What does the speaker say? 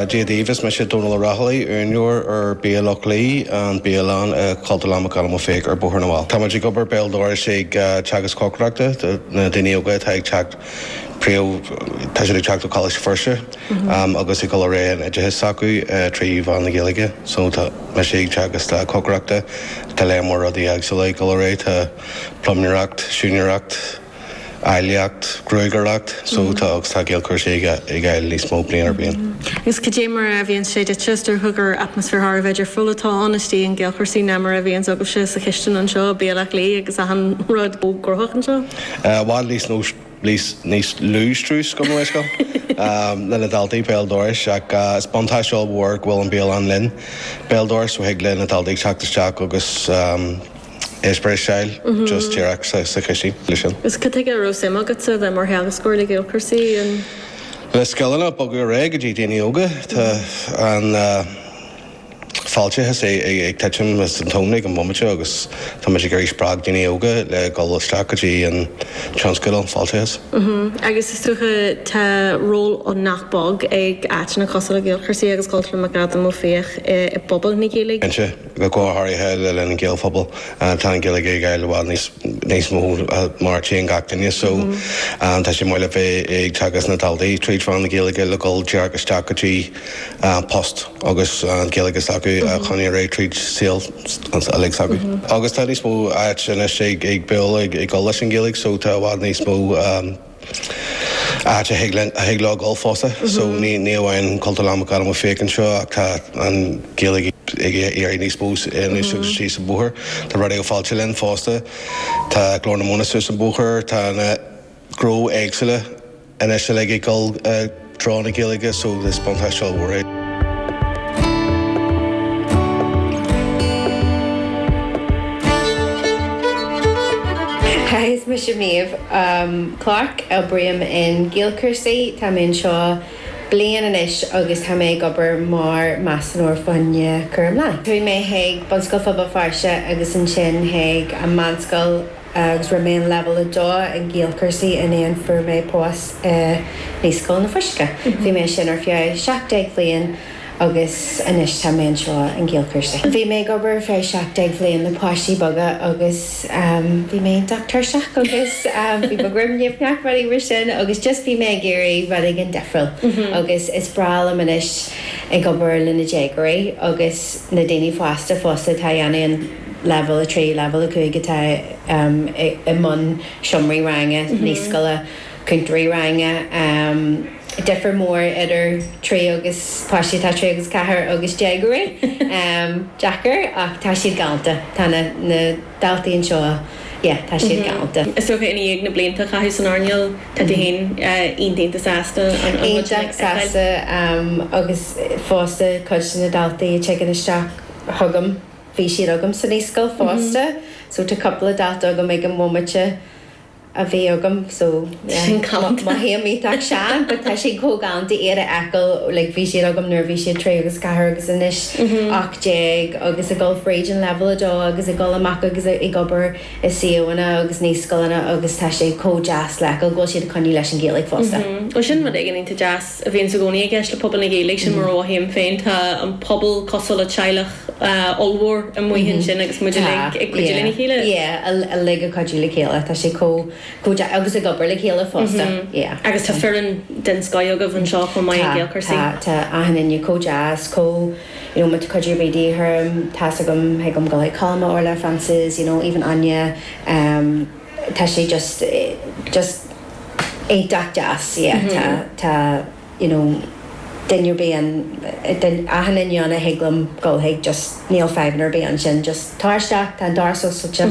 Dia daoibh, is mise Dónal Ó Raghallaigh, úinéir ar Bia Loch Lao, an bhialann i gCultúrlann McAdam Ó Fiaich ar Bhóthar na bhFál. Táimid ag obair béal dorais ag teagasc cócaireachta do na daoine óga atá ag teacht, príomh, tá siad ag teacht ó Choláiste Feirste agus ag dul ar aghaidh leis an oideachas s'acu trí mheán na Gaeilge. So tá mise ag teagasc cócaireachta, tá lear mór rudaí éagsúla ag dul ar aghaidh, tá pluiméireacht, siúinéireacht, áilleacht, gruagaireacht, so tá agus tá Gaelchúrsaí ag fháil níos mó bliain ar bhliain. Agus cad é mar a bhíonn sé duitse? Is dócha gur atmaisféar thar a bheith difriúil atá ann istigh in Gaelchúrsaí ná mar a bhíonns agatsa sa chistin anseo, Bia Loch Lao agus achan rud chomh gnóthach anseo. I bhfad níos lú níos níos lú strus agam anois agam le na daltaí béal dorais ach is buntáiste ollmhór go bhfuil an bialann linn béal dorais so thig le na daltaí teacht isteach agus eispéireas a fháil, just díreach sa chistin le sin. Agus cad chuige a raibh suim agatsa a bheith mar theagascóir le Gaelchúrsaí? Le scileanna a bhogadh ar aghaidh go dtí daoine óga. Tá an fáilteachas ag titim as an tóin ag an bhomaite seo agus táimid ag iarraidh spreagadh daoine óga le dhul isteach go dtí an tionscal fáilteachais. Agus is dócha tá ról nach beag ag áiteanna cosúil le Gaelchúrsaí agus Cultúrlann McAdam Ó Fiaich i bpobal na Gaeilge. Cinnte. go háirithe le linn an Gaelphobal. Tá an Ghaeilge ag éirí i bhfad níos mó mar theanga ag gach duine so tá sé maith le bheith ag teagasc na daltaí trí mheán na Gaeilge le dhul díreach isteach go dtí post agus an Ghaeilge s'acu a choinneáil ar aghaidh tríd saol uilig s'acu. Agus tá níos mó áit anois ag plé ag dul leis an Ghaeilge so tá i bhfad níos mó áit a thig linn, a thig leo dhul fosta. So ní, ní amháin Cultúrlann McAdam Ó Fiaich anseo ach tá an Ghaeilge ag éirí níos mó anois agus suas an Bóthar. Tá Raidió Fáilte linn fosta. Tá Glór na Móna suas an Bóthar. Tá na gnónna éagsúla anois uilig ag dhul, eh, trí mheán na Gaeilge so is buntáiste ollmhór é. Hi, is mise Méabh Clarke. Oibrím in GaelChúrsaí. Tá mé anseo bliain anois agus tá mé ag obair mar Measúnóir faoi choinne Cúram Leanaí. Chuaigh mé chuig Bunscoil Phobal Feirste agus ansin chuig an meánscoil. agus rinne mé an leibhéal a dó in Gaelchúrsaí ansin fuair mé post i Naíscoil na Fuiseoige. Bhí mé ansin ar feadh seacht déag bhliain agus anois tá mé anseo in Gaelchúrsaí. Bhí mé ag obair ar feadh seacht déag bhliain le páistí beaga agus bhí mé iontach tuirseach agus bhí mo dhroim nimhneach rudaí mar sin agus just bhí mé ag iarraidh rud éigin difriúil agus is breá liom anois ag obair le na déagóirí agus na daoine fásta fosta atá ag déanamh an Leibhéal 3, Leibhéal 5 atá i mbun seomraí ranga, naíscoile, cúntóirí ranga. Difear mór idir trí agus, páistí atá trí agus ceathair agus déagóirí. Deacair ach tá siad galánta. Tá na daltaí anseo, yeah, tá siad galánta. Is dócha i ndiaidh na blianta a chaitheamh san earnáil tá tú féin iontach sásta an rud sin a fheiceáil. Iontach sásta agus fosta cuid de na daltaí a tigeann isteach chugam. Bhí siad agam sa naíscoil fosta so tá cúpla dalta agam ag an bhomaite a bhí agam so yeah mothaím iontach sean but tá siad chomh galánta iad a fheiceáil like bhí siad agam nuair a bhí siad trí agus ceathair agus anois ocht déag agus ag dul fríd an leibhéal a dó agus ag dul amach agus ag obair i suíomhanna agus naíscoileanna agus tá sé chomh deas le fheiceáil go bhfuil siad ag coinneáil leis an Ghaeilge fosta. Ó sin rud éigin iontach deas. a bhíonn i gcónaí i gceist le pobal na Gaeilge, sin mar a mhothaím féin. Tá an pobal cosúil le teaghlach ollmhór amuigh ansin agus muid uilig ag cuidiú lena chéile. Yeah, uilig ag cuidiú le chéile, tá sé chomh deas, agus ag obair le chéile fosta, yeah. Agus tá foireann den scoth agaibh anseo chomh maith ag Gaelchúrsaí. Tá, tá, tá achan éinne chomh deas, chomh, you know, má tá cuidiú ar bith de dhíth orm, tá's agam, thig liom dhul chuig Colm, Orlaith, Frances, you know, even Áine. tá sé just, just iontach deas, yeah, tá, tá, you know, duine ar bith ann, achan éinne, thig liom dhul chuige just níl fadhbanna ar bith ansin just tar isteach, tá an doras oscailte.